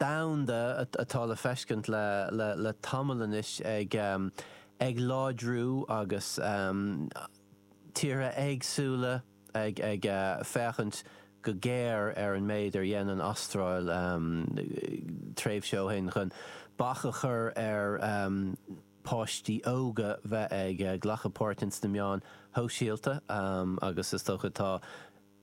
domhanda atá le feiscint le tamall anois ag láidriú agus tíortha éagsúla ag féachaint go géar ar an méid ar dhein an Astráil tréimhse ó shin chun bac a chur ar pháistí óga bheith ag glacadh páirte ins na meáin shóisialta agus is dócha tá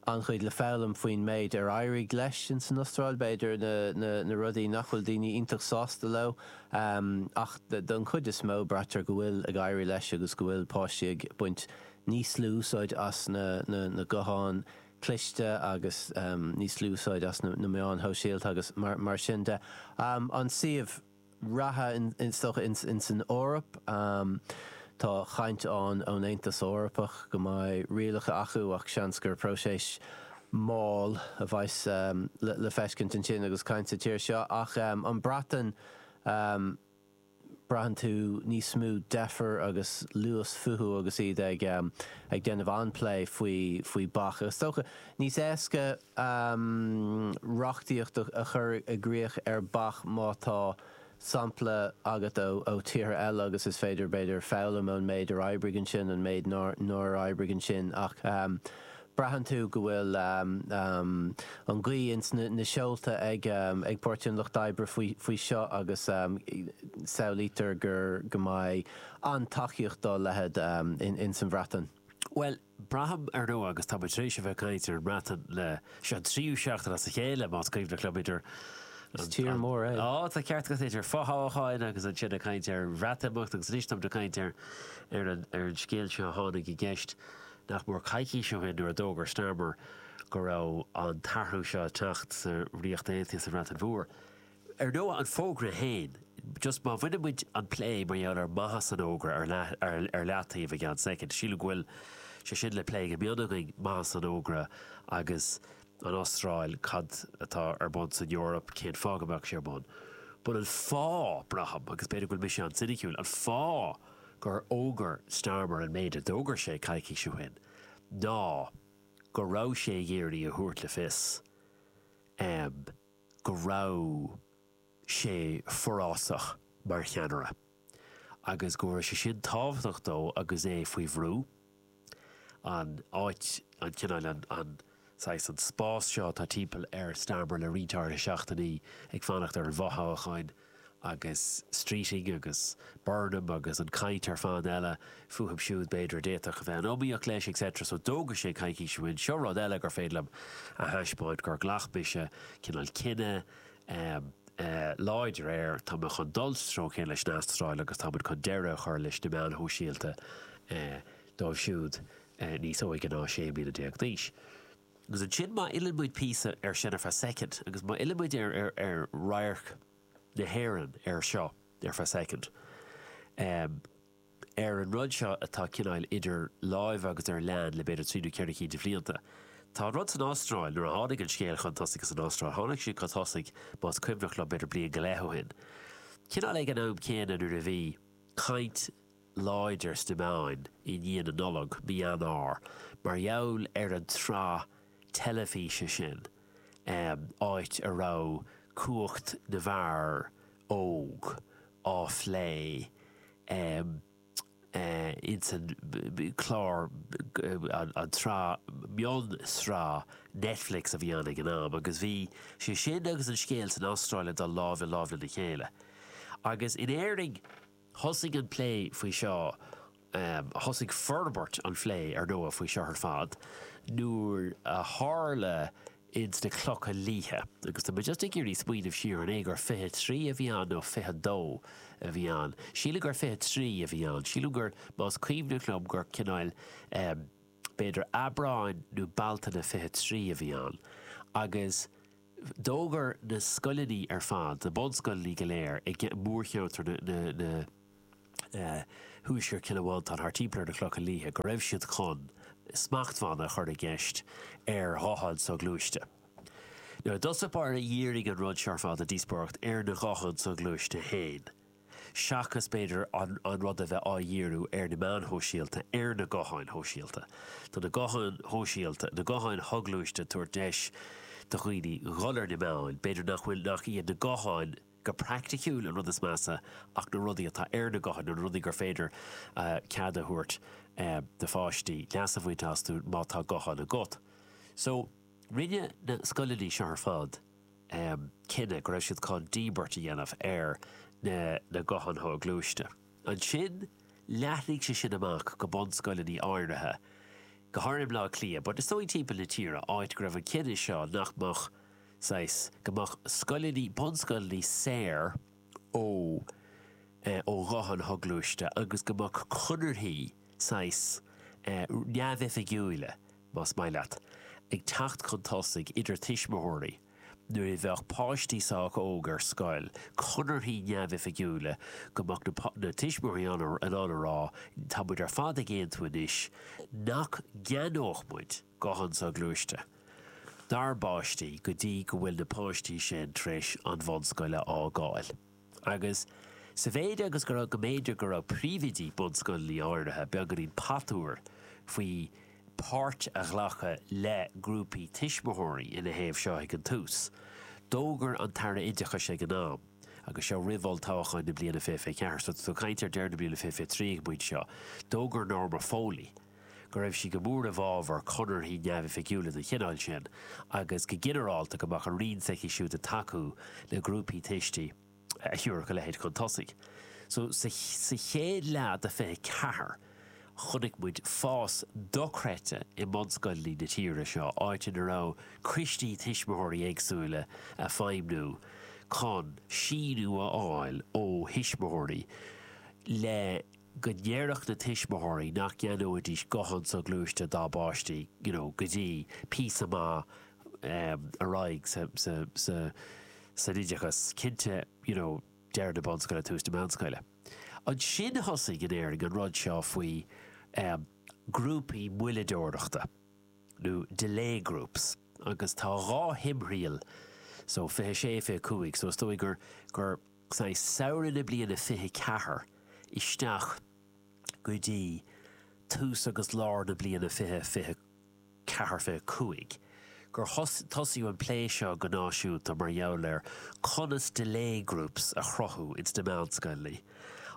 an-chuid le foghlaim faoin méid ar éirigh leis in san Astráil, b'fhéidir na rudaí nach bhfuil daoine iontach sásta leo, ach don chuid is mó braitear go bhfuil ag éirí leis agus go bhfuil páistí ag baint níos lú úsáid as na gutháin chliste agus níos lú úsáid as na meáin shóisialta agus mar sin de. An suíomh. reatha is dócha ins an Eoraip. Tá caint ann ón Aontas Eorpach go mbeidh rialacha acu ach seans gur próiseas mall a bheidh le feiscint ansin agus caint sa tír seo. Ach an Breatain, braitheann tú níos mó deifir agus luas fúthu agus iad ag déanamh an-plé faoi bac. Is dócha níos éasca. um reachtaíocht a chur i gcríoch ar bac má tá sampla agat ó tíortha eile agus is féidir, b'fhéidir, foghlaim ón méid ar oibrigh ansin, an méid nár oibrigh ansin ach um braitheann tú go bhfuil um an ghaoth ins na seolta ag um ag Páirtí an Lucht Oibre faoi faoi seo agus um samhlaítear gur go mbeidh an-tacaíocht dá leithéid um ins an Bhreatain. Bhuel, Braithim ar ndóigh, agus táimid tar éis a bheith ag caint ar an mBreatain le. Seo an tríú seachtain as a chéile, más cuimhin liom, idir an. Is tír mór é. Á, tá an ceart agat, idir fothoghcháin agus ansin ag caint ar Bhreatimeacht agus anois táimid ag caint ar an scéal seo a tháinig i gceist nach mór coicís ó shin nuair a d'fhógair Starmer go raibh an t-athrú seo ag teacht sa Ríocht Aontaithe, sa Bhreatain Mhór. Ar ndóigh, an fógra féin, just má bhaineann muid an plé mar gheall ar maitheas an fhógra ar leataobh go ceann soicind, sílim go bhfuil sé sin le plé go mion againn, maitheas an fhógra agus an Astráil, cad atá ar bun san Eoraip, cén fáth go mbeadh sé ar bun. Bhuel, an fáth, braithim, agus b'fhéidir go bhfuil mise an-soiniciúil, an fáth gur fhógair Starmer an méid a d'fhógair sé coicís ó shin ná go raibh sé ag iarraidh a thabhairt le fios, go raibh sé forásach mar cheannaire agus go raibh sé sin tábhachtach dó agus é faoi bhrú, an áit, an cineál, an saghas, an spás seo atá timpeall ar Starmer le roinnt áirithe seachtainí ag fanacht ar an bhfothoghchán. agus Streeting agus Burnham agus an chaint ar fad eile fúthu siúd b'fhéidir a d'fhéadfadh a bheith in iomaíocht leis etc. So d'fhógair sé coicís ó shin, seo rud eile gur féidir liom a thaispeáint gur ghlac mise cineál cinneadh láidir air, tá mé chun dul sa treo céanna leis an Astráil agus tá muid chun deireadh a chur leis na meáin shóisialta dóibh siúd níos óige ná 16 bliana d'aois. Agus ansin má fhilleann muid píosa ar sin ar feadh soicind, agus má fhilleann muid ar radharc na hÉireann ar seo ar feadh soicind, ar an rud seo atá cineál idir láimhe agus ar lean le b'fhéidir trí nó ceithre cinn de bhlianta. Tá an rud san Astráil, nuair a tháinig an scéal chun tosaigh san Astráil, tháinig sé chun tosaigh, más cuimhneach liom, b'fhéidir bliain go leith ó shin, cineál ag an am céanna nuair a bhí caint, láidir sna meáin i ndiaidh na Nollag, mí Eanáir, mar gheall ar an tsraith teilifíse sin, áit a raibh cumhacht na bhfear óg á phlé ins an clár, an tsraith, mion-sraith Netflix a bhí ann ag an am, agus bhí sé sin agus an scéal san Astráil ag dul lámh i lámh lena chéile. Agus in Éirinn. Thosaigh an plé faoi seo, thosaigh forbairt an phlé, ar ndóigh, faoi seo ar fad nuair a tharla ins na Clocha Liatha, agus tá mé just ag iarraidh smaoineamh siar, an é gur 23 a bhí ann nó 22 a bhí ann? Sílim gur 23 a bhí ann. Sílim gur, más cuimhneach liom, gur cineál b'fhéidir Aibreáin nó Bealtaine 23 a bhí ann agus, D'fhógair na scoileanna ar fad, na bunscoileanna go léir i mórcheantar Thuaisceart Chill Mhantáin thar timpeall ar na Clocha Liatha go raibh siad chun smachtbhanna a chur i gceist ar ghutháin shoghluaiste. Ar dtús báire dhírigh an rud seo ar fad an díospóireacht ar na gutháin shoghluaiste féin. seachas b'fhéidir an rud a bheith á dhíriú ar na meáin shóisialta, ar na gutháin shóisialta. Tá na gutháin shóisialta, na gutháin shoghluaiste ag tabhairt deis do dhaoine dhul ar na meáin, b'fhéidir nach bhfuil, nach iad na gutháin go praiticiúil an rud is measa ach na rudaí atá ar na gutháin, na rudaí gur féidir cead a thabhairt do pháistí leas a bhaint astu má tá guthán agat. So, rinne na scoileanna seo ar fad, cinneadh go raibh siad chun díbirt a dhéanamh ar na gutháin shoghluaiste. Ansin, leathnaigh sé sin amach go bunscoileanna áirithe, go háirithe i mBleá Cliath, but is dóigh timpeall na tíre, áit go raibh an cinneadh seo nach mbeadh saghas, go mbeadh scoileanna, bunscoileanna saor ó ó ghutháin shoghluaiste agus go mbeadh conarthaí saghas neamhoifigiúila más maith leat, ag teacht chun tosaigh idir tuismitheoirí nuair a bheadh páistí sách óg ar scoil, conarthaí neamhoifigiúla go mbeadh na tuismitheoirí in ann a rá, tá muid ar fad ag aontú anois nach gceannódh muid guthán soghluaiste dár bpáistí go dtí go bhfuil na páistí sin tar éis an bhunscoil a fhágáil. Agus sa mhéid agus go raibh, go mb'fhéidir go raibh príomhoidí bunscoileanna áirithe beagáinín patuar faoi páirt a ghlacadh le grúpaí tuismitheoirí ina thaobh seo ag an tús, d'fhógair an tAire Oideachais ag an am, agus seo roimh olltoghchán na bliana 2024, so tá muid ag caint ar deireadh na bliana 2023 ag an bpointe seo, d'fhógair Norma Foley, go raibh sí go mór i bhfabhar conarthaí neamhoifigiúla den chineál sin agus go ginearálta go mbeadh an Roinn s'aici siúd ag tacú le grúpaí tuistí a thabharfadh a leithéid chun tosaigh. So, sa chéad leath de 24, chonaic muid fás dochreidte i mbunscoileanna na tíre seo, áit ina raibh coistí tuismitheoirí éagsúla a' feidhmniú chun síniú a fháil ó thuismitheoirí le go ndéarfadh na tuismitheoirí nach gceannóidís guthán soghluaiste dá bpáistí you know go dtí píosa maith em ar aghaidh sa sa sa san oideachas cinnte you know deireadh na bunscoile tús na meánscoile. Ansin thosaigh in Éirinn an rud seo faoi em grúpaí moilleadóireachta nó delay groups agus tá dhá thimthriall so fiche sé fiche cúig so is dóigh gur gur Samhradh na bliana 24 isteach go dtí tús agus lár na bliana 2024, 25, gur tosaíodh an plé seo go náisiúnta mar gheall ar conas delay groups a chruthú ins na meánscoileanna,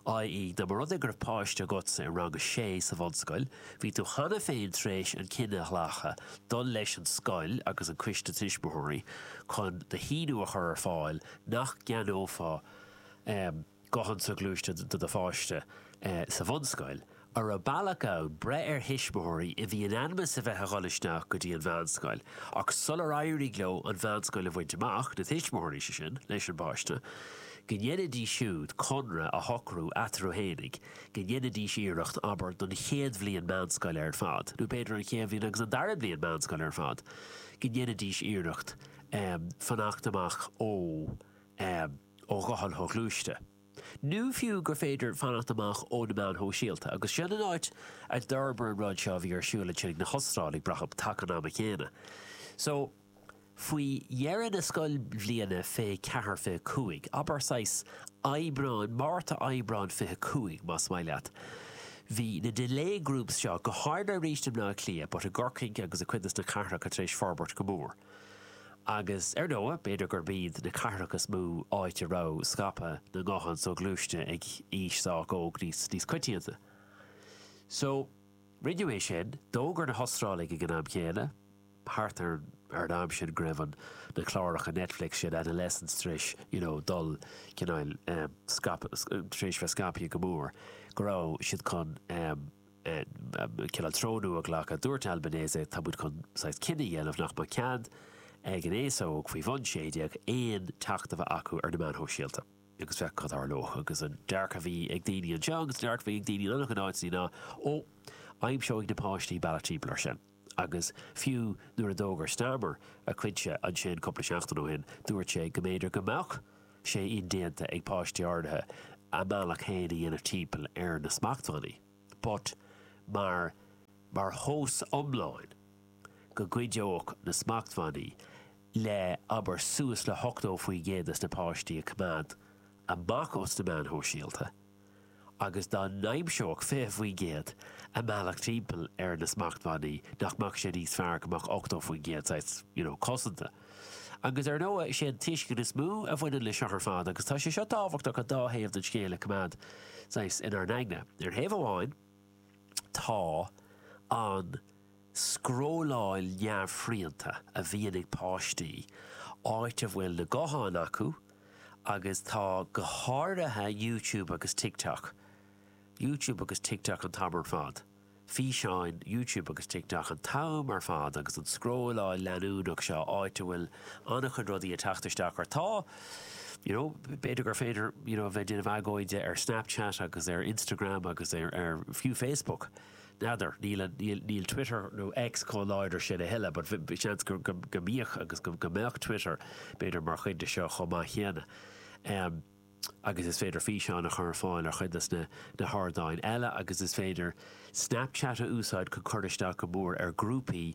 i.e. ná mar rud é go raibh páiste agatsa i rang 6 sa bhunscoil, bhí tú cheana féin tar éis an cinneadh a ghlacadh dul leis an scoil agus an coiste tuismitheoirí chun do shíniú a chur ar fáil nach gceannófá guthán soghluaiste do do pháiste sa bhunscoil, an raibh bealach ann breith ar thuismitheoirí a bhí in ainm is a bheith a dhul isteach go dtí an mheánscoil, ach sular éirigh leo an mheánscoil a bhaint amach, na tuismitheoirí, sé sin, leis an bpáiste, go ndéanfaidís siúd conradh a shocrú eatarthu fhéinig go ndéanfaidís iarracht, abair, don chéad bhliain meánscoile ar fad, nó b'fhéidir an chéad bhliain agus an dara bliain meánscoile ar fad, go ndéanfaidís iarracht um fanacht amach ó um ó ghuthán soghluaiste, nó fiú gur féidir fanacht amach ó na meáin shóisialta. Agus seo an áit a d'fhorbair an rud seo a bhí ar siúl ansin ag na hOstráiligh, braithim, taca an ama chéanna. So, faoi dheireadh na scoilbhliana, fiche ceathair, fiche cúig, abair, saghas Aibreán, Márta, Aibreán fiche cúig, más maith leat, bhí na delay groups seo, go háirithe arís i mBleá Cliath, but i gCorcaigh agus i cuid de sna cathracha tar éis forbairt go mór. Agus ar ndóigh, b'fhéidir gurb iad na cathracha is mó áit a raibh scaipeadh na nguthán soghluaiste ag aois sách óg níos níos coitianta. So, rinneadh é sin. D'fhógair na hOstráiligh ag an am chéanna, thart ar ar an am sin, go raibh na cláracha Netflix sin, Adolescence, tar éis, you know, dul, cineáil, eh, scaipeadh, tar éis bheith scaipthe go mór, go raibh siad chun, em, Cineál treo nua a ghlacadh. Dúirt Albanese, tá muid chun saghas cinneadh a dhéanamh nach mbeadh cead ag an aos óg faoi bhun sé déag aon teacht a bheith acu ar na meáin shóisialta, agus féach cad a tharlódh. Agus an dearcadh a bhí ag daoine anseo, agus an dearcadh a bhí ag daoine in an-chuid áiteanna ná, Ó, aimseoidh na páistí bealach timpeall air sin. Agus fiú nuair a d'fhógair Starmer a chuid sin cúpla seachtain ó shin, dúirt sé go mb'fhéidir go mbeadh sé indéanta ag páistí áirithe a mbealach féin a dhéanamh timpeall ar na smachtbhannaí, but mar mar thomhas iomláin go gcuideodh na smachtbhannaí le abair suas le hochtó faoin gcéad des na páistí a coimeád amach os na meáin shóisialta. agus dá n-aimseodh 20% a mbealach timpeall ar na smachtbhannaí, nach mbeadh sé níos fearr go mbeadh 80% saghas, you know, cosanta? Agus ar ndóigh, is é an tuiscint is mó a bhaineann leis seo ar fad, agus tá sé seo tábhachtach an dá thaobh den scéal a choimeád saghas inár n-aigne. Ar thaobh amháin, tá an. scrolláil neamhshrianta a bhíonn ag páistí, áit a bhfuil na gutháin acu agus tá go háirithe YouTube agus TikTok YouTube agus TikTok an t-am ar fad físeáin YouTube agus TikTok an t-am ar fad agus an scrolláil leanúnach seo áit a bhfuil an-chuid rudaí ag teacht isteach ort. Tá you know b'fhéidir gur féidir you know a bheith ag déanamh éagóra ar Snapchat agus ar Instagram agus ar ar fiú Facebook. N'fheadar. Níl Twitter nó X chomh láidir sin a thuilleadh, but seans go mbíodh agus go mbeadh Twitter b'fhéidir mar chuid de seo chomh maith céanna. Agus is féidir físeáin a chur ar fáil ar chuid de na hardáin eile agus is féidir Snapchat a úsáid chun cur isteach go mór ar ghrúpaí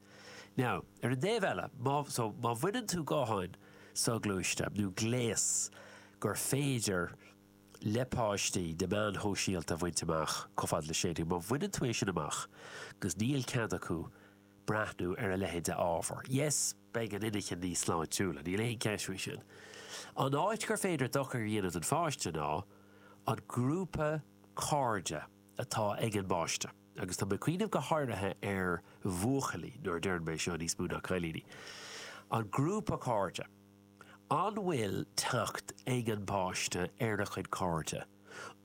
Now, ar an dtaobh eile, má, so, má bhaineann tú gutháin soghluaiste, nó gléas gur féidir le páistí na meáin shóisialta a bhaint amach chomh fada le 16, má bhaineann tú é sin amach agus níl cead acu breathnú ar a leithéid d'ábhar, yes, beidh an inchinn níos sláintiúla, níl aon cheist faoi sin. An áit gur féidir dochar a dhéanamh don pháiste ná an grúpa cairde atá ag an bpáiste. Agus tá mé ag cuimhneamh go háirithe ar bhuachaillí, nuair a deireann mé seo, níos mó ná cailíní. An grúpa cairde. An bhfuil teacht ag an bpáiste ar a chuid cairde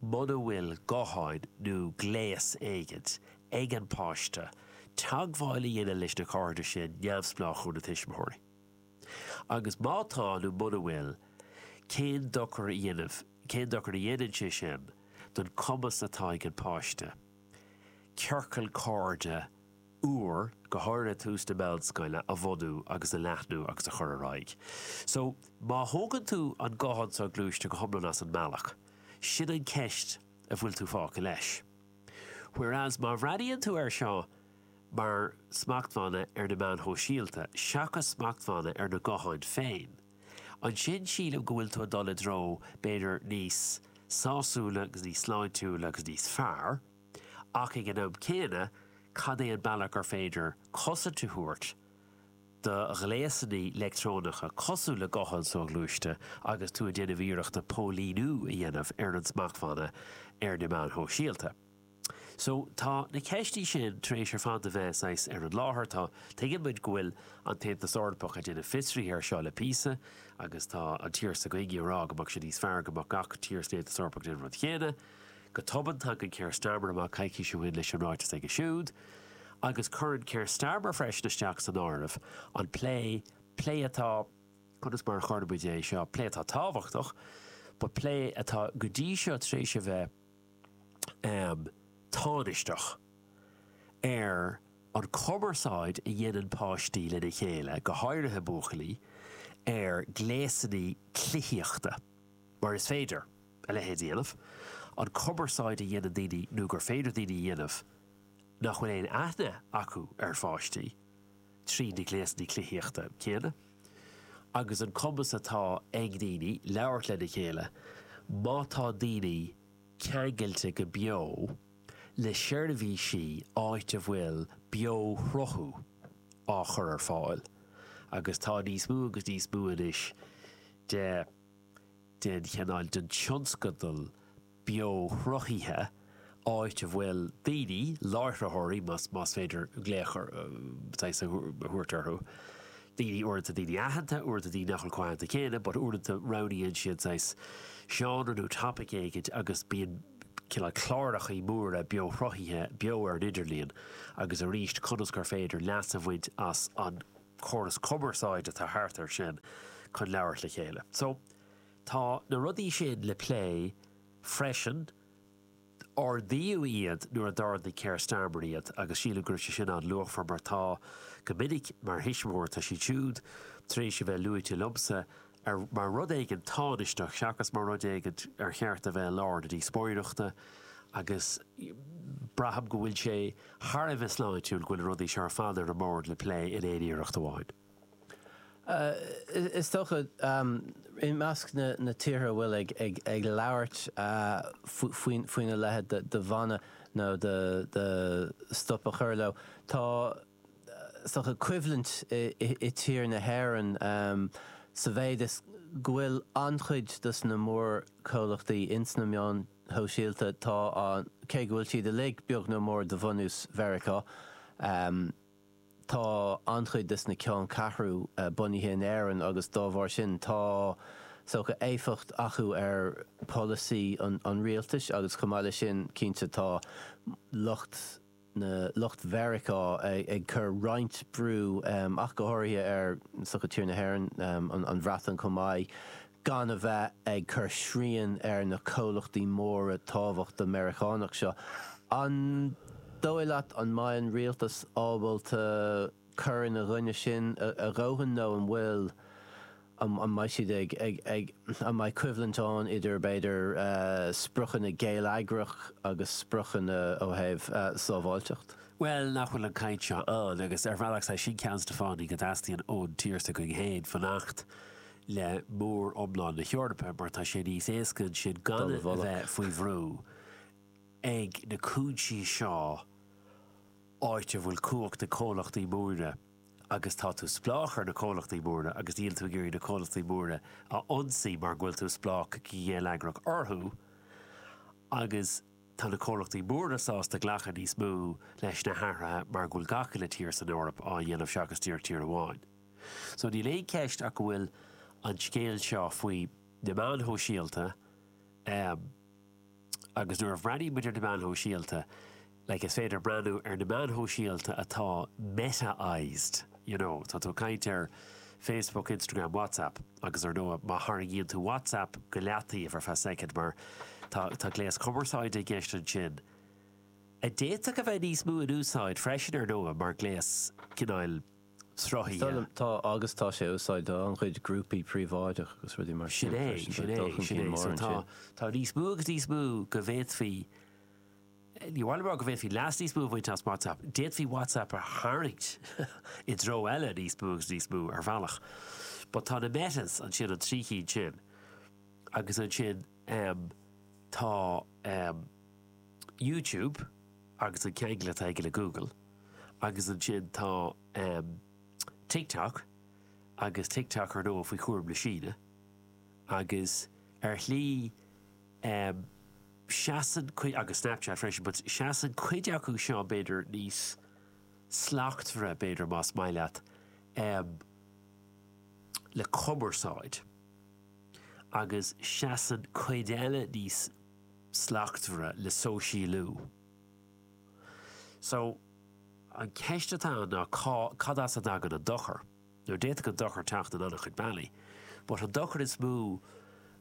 muna bhfuil guthán nó gléas éigin ag an bpáiste teagmháil a dhéanamh leis na cairde sin neamhspleách ó na tuismitheoirí? Agus má tá nó muna bhfuil, cén dochar a dhéanamh, cén dochar a dhéanann sé sin don chumas atá ag an páiste ciorcal cairde úr, go háirithe tús na meánscoile, a bhunú agus a leathnú agus a chur ar aghaidh? So, má thógann tú an guthán soghluaiste go hiomlán as an mbealach, sin an cheist a bhfuil tú fágtha leis. Whereas má bhreathnaíonn tú ar seo, mar smachtbhanna ar na meáin shóisialta seachas smachtbhanna ar na gutháin féin, ansin sílim go bhfuil tú ag dul i dtreo b'fhéidir níos sásúla agus níos sláintiúla agus níos fearr, ach ag an am céanna cad é an bealach gur féidir cosaint a thabhairt do ghléasanna leictreonacha cosúil le gutháin soghluaiste agus tú ag déanamh iarrachta póilíniú a dhéanamh ar an smachtbhanna ar na meáin shóisialta. So, tá na ceistí sin tar éis ar fad a bheith saghas ar an láthair. Tá, tuigeann muid go bhfuil an tAontas Eorpach ag déanamh fiosraithe ar seo le píosa agus tá an tír s'againne ag rá go mbeadh sé níos fearr go mbeadh gach tír san Aontas Eorpach ag déanamh an rud chéanna. Go tobann, tagann Keir Starmer amach coicís ó shin leis an ráiteas aige siúd. Agus cuireann Keir Starmer freisin isteach san áireamh an plé, plé atá, conas mar a chuirfimid é seo, plé atá tábhachtach but plé atá go dtí seo tar éis a bheith, tánaisteach ar an cumarsáid a dhéanann páistí lena chéile, go háirithe buachaillí, ar ghléasanna cluichíochta. Mar is féidir a leithéid a dhéanamh, an cumarsáid a dhéanann daoine nó gur féidir daoine a dhéanamh nach bhfuil aon aithne acu ar pháistí, trí na gléasanna cluichíochta céanna agus an cumas atá ag daoine labhairt lena chéile, má tá daoine ceangailte go beo le seirbhísí áit a bhfuil beoshruthú á chur ar fáil, agus tá níos mó agus níos mó anois de den chineál den tionscadal beoshruthaithe, áit a bhfuil daoine, láithreoirí más más féidir glaoch saghas a thabhairt orthu, daoine uaireanta daoine aitheanta, uaireanta daoine nach bhfuil chomh haitheanta céanna, but uaireanta roghnaíonn siad saghas seánra nó topic éigin agus bíonn cineál clárachaí móra beoshruthaithe beo ar an idirlíon agus arís conas gur féidir leas a bhaint as an córas cumarsáide atá thart air sin chun labhairt le chéile. So, tá na rudaí sin le plé freisin. Ardaíodh iad nuair a d'ardaigh Keir Starmer iad agus sílim go raibh sé sin an-luachmhar mar atá, go minic, mar thuismitheoir, tá siad siúd tar éis a bheith luaite liomsa, mar rud éigin tánaisteach seachas mar rud éigin ar cheart a bheith i lár na díospóireachta agus braithim go bhfuil sé thar a bheith sláintiúil go bhfuil na rudaí seo ar fad ar an mbord le plé in aon iarracht amháin. Is dócha, i measc na tíortha a bhfuil ag labhairt faoina leithéid de bhanna nó de stop a chur leo, tá, is dócha coimhlint i tír na hÉireann sa mhéid is go bhfuil an-chuid dos na mór comhlachtaí ins na meáin shóisialta tá á cé go bhfuil siad uilig beag nó mór de bhunús Mheiriceá tá an-chuid des na ceanncheathrú bunaithe in Éirinn agus dá bharr sin tá is dócha éifeacht acu ar pholasaí an rialtais agus chomh maith leis sin cinnte tá lucht na lucht Mheiriceá ag cur roinnt brú, ach go háirithe ar is dócha tír na hÉireann, an Bhreatain chomh maith, gan a bheith ag cur srian ar na comhlachtaí móra tábhachtacha Meiriceánacha seo. An dóigh leat an mbeidh an rialtas ábalta cur ina gcoinne sin a dhóthain nó an bhfuil. an mbeidh siad ag, ag, an mbeidh coimhlint ann idir b'fhéidir spriocanna geilleagrach agus spriocanna ó thaobh sábháilteacht? Bhuel, nach bhfuil an ceann seo ann, agus ar bhealach is é sin ceann des na fáthannaí go dteastaíonn ón tír s'againn féin fanacht le móriomlán na hEorpa, mar tá sé níos éasca ansin gan a bheith faoi bhrú ag na cúinsí seo áit a bhfuil cumhacht ag comhlachtaí móra. agus tá tú spleách ar na comhlachtaí móra agus níl tú ag iarraidh na comhlachtaí móra a ionsaí mar go bhfuil tú spleách go geilleagrach orthu agus tá na comhlachtaí móra sásta glacadh níos mó leis na hathruithe mar go bhfuil gach uile tír san Eoraip á dhéanamh seachas díreach tír amháin. So níl aon cheist ach go bhfuil an scéal seo faoi na meáin shóisialta, eh, Agus nuair a bhreathnaíonn muid ar na meáin shóisialta, like, is féidir breathnú ar na meáin shóisialta atá Meta-ised, you know, tá tú ag caint ar Facebook, Instagram, WhatsApp, agus ar ndóigh má tharraingíonn tú WhatsApp go leataobh ar feadh soicind, mar tá gléas cumarsáide i gceist ansin, a d'fhéadfadh a bheith níos mó in úsáid freisin ar ndóigh mar gléas cineáil, sruthaithe. Tá, agus tá sé á úsáid do an-chuid grúpaí príobháideach agus rudaí mar sin freisin. Tá dul chun cinn mór ansin. Tá níos mó agus níos mó go bhféadfaí, ní amháin go bhféadfaí leas níos mó a bhaint as WhatsApp, d'fhéadfaí WhatsApp a tharraingt i dtreo eile níos mó agus níos mó ar bhealach. But tá na Metas ansin, na trí chinn sin, agus ansin tá. YouTube agus an ceangal atá aige le Google agus ansin tá ehm TikTok agus TikTok ar ndóigh faoi chúram na Síne agus ar shlí ehm seasann cuid, agus Snapchat freisin but seasann cuid acu seo b'fhéidir níos slachtmhaire b'fhéidir más maith leat ehm le cumarsáid agus seasann cuid eile níos slachtmhaire le sóisialú. So, an cheist atá ann ná cá, cad as a dtagann an dochar? Now, d'fhéadfadh an dochar teacht in an-chuid bealaí, but an dochar is mó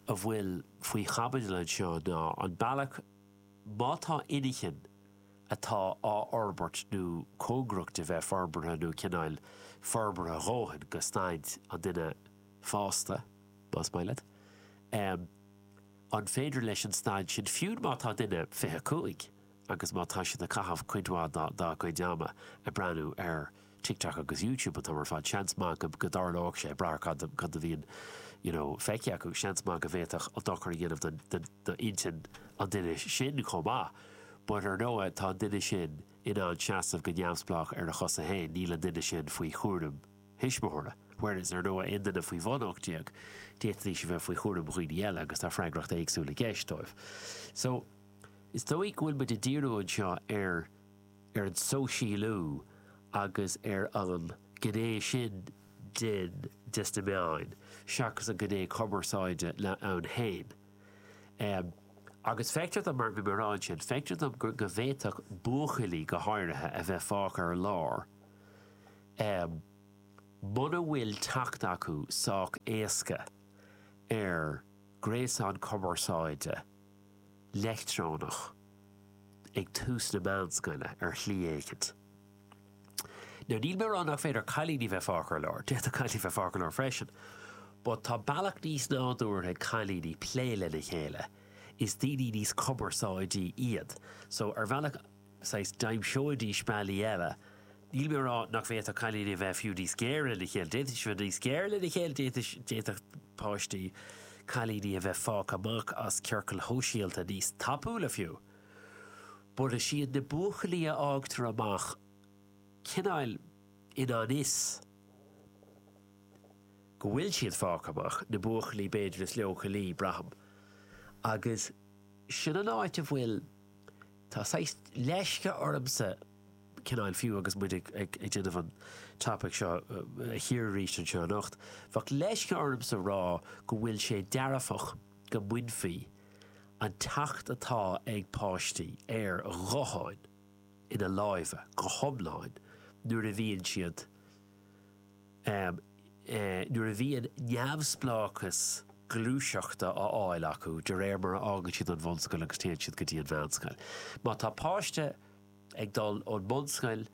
a bhfuil faoi chaibidil anseo ná an bealach, má tá inchinn atá á fhorbairt nó cóngarach do bheith forbartha nó cineál forbartha a dhóthain go staid an duine fásta, más maith leat, eh, An féidir leis an staid sin, fiú má tá duine 25 agus má tá siad ag caitheamh cuid mhaith dá gcuid ama ag breathnú ar TikTok agus YouTube an t-am ar fad, seans maith go dtarlóidh sé, ag brath ar cad a bhíonn you know feicthe acu, seans maith go bhféadfadh sé dochar a dhéanamh d'intinn an duine sin chomh maith. But ar ndóigh tá an duine sin in ann seasamh go neamhspleách ar a chosa féin, níl an duine sin faoi chúram, thuismitheora, whereas ar ndóigh aon duine faoi bhun 18, d'fhéadfaidís a bheith faoi chúram dhaoine eile agus tá freagracht éagsúil i gceist dóibh. So, is dóigh liom go bhfuil muid ag díriú anseo ar ar an sóisialú agus ar an gné sin den des na meáin seachas an gné cumarsáide ann féin. Em agus feictear dom, mar bhí mé a rá ansin, feictear dom go go bhféadfadh buachaillí go háirithe a bheith fágtha ar lár, Em. muna bhfuil teacht acu sách éasca ar ghréasán cumarsáide leictreonach ag tús na meánscoile ar shlí éicint. Now níl mé a rá nach féidir cailíní bheith fágtha ar lár, d'fhéadfadh cailíní bheith fágtha ar lár freisin, but tá bealach níos nádúrtha ag cailíní plé lena chéile, is daoine níos cumarsáidí iad. So ar bhealach. saghas d'aimseoidís bealaí eile. Níl mé ag rá nach bhféadfadh cailíní a bheith fiú níos géire lena chéile, d'fhéadfadh siad bheith níos géire lena chéile, d'fhéadfadh, d'fhéadfadh páistí, cailíní a bheith fágtha amach as ciorcail shóisialta níos tapúla fiú. But is iad na buachaillí a fhágtar amach cineáil i ngan fhios go bhfuil siad fágtha amach, na buachaillí b'fhéidir is leochailí, braithim. Agus sin an áit a bhfuil. Tá saghas leisce ormsa cineáil fiú agus muid ag déanamh an topaic seo a chíoradh arís anseo anocht, bheadh leisce ormsa rá go bhfuil sé dearfach go mbainfí an teacht atá ag páistí ar ghutháin ina láimhe go hiomlán nuair a bhíonn siad amh nuair a bhíonn neamhspleáchas gluaiseachta á fháil acu de réir mar a fhágann siad an bhunscoil agus téann siad go dtí an mheánscoil. Má tá páiste ag dul ón mbunscoil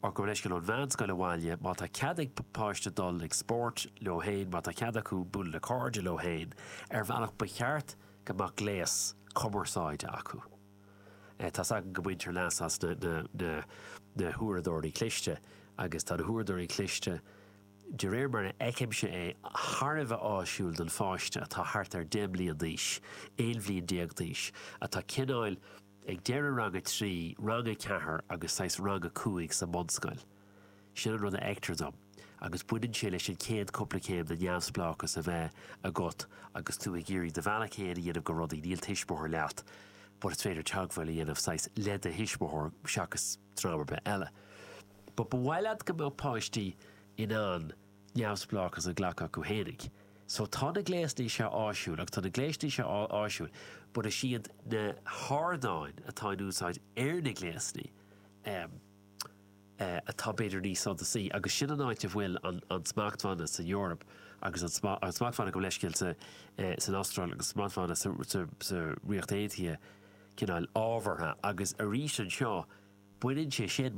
nó gabh mo leithscéal ón mheánscoil abhaile, má tá cead ag páiste dul chuig spórt leo féin, má tá cead acu bualadh le cairde leo féin, ar bhealach ba cheart go mbeadh gléas cumarsáide acu. Tá's againn go mbaintear leas as na huaireadóirí cliste, agus tá na huaireadóirí cliste, de réir mar a fheicimse é, thar a bheith áisiúil don pháiste atá thart ar 10 mbliain d'aois, 11 bhliain d'aois, atá cineáil ag deireadh rang a trí, rang a ceathair agus saghas rang a cúig sa mbunscoil. Sin an rud a fheictear dom, agus baineann sé leis an chéad cúpla céim de neamhspleáchas a bheith agat agus tú ag iarraidh do bhealach fhéin a dhéanamh go rudaí, níl tuismitheoir leat but is féidir teagmháil a dhéanamh saghas le do thuismitheoir seachas dream ar bith eile. But ba mhaith leat go mbeadh páistí in ann neamhspleáchas a ghlacadh chucu fhéinig. So tá na gléasanna seo áisiúil agus tá na gléasanna seo áisiúil but is iad na hardáin atá in úsáid ar na gléasanna, em, atá b'fhéidir níos suntasaí, agus sin an áit a bhfuil an smachtbhanna san Eoraip agus an smachtbhanna, gabh mo leithscéal, san Astráil agus an smachtbhanna sa Ríocht Aontaithe cineál ábhartha. Agus arís anseo, baineann sé sin.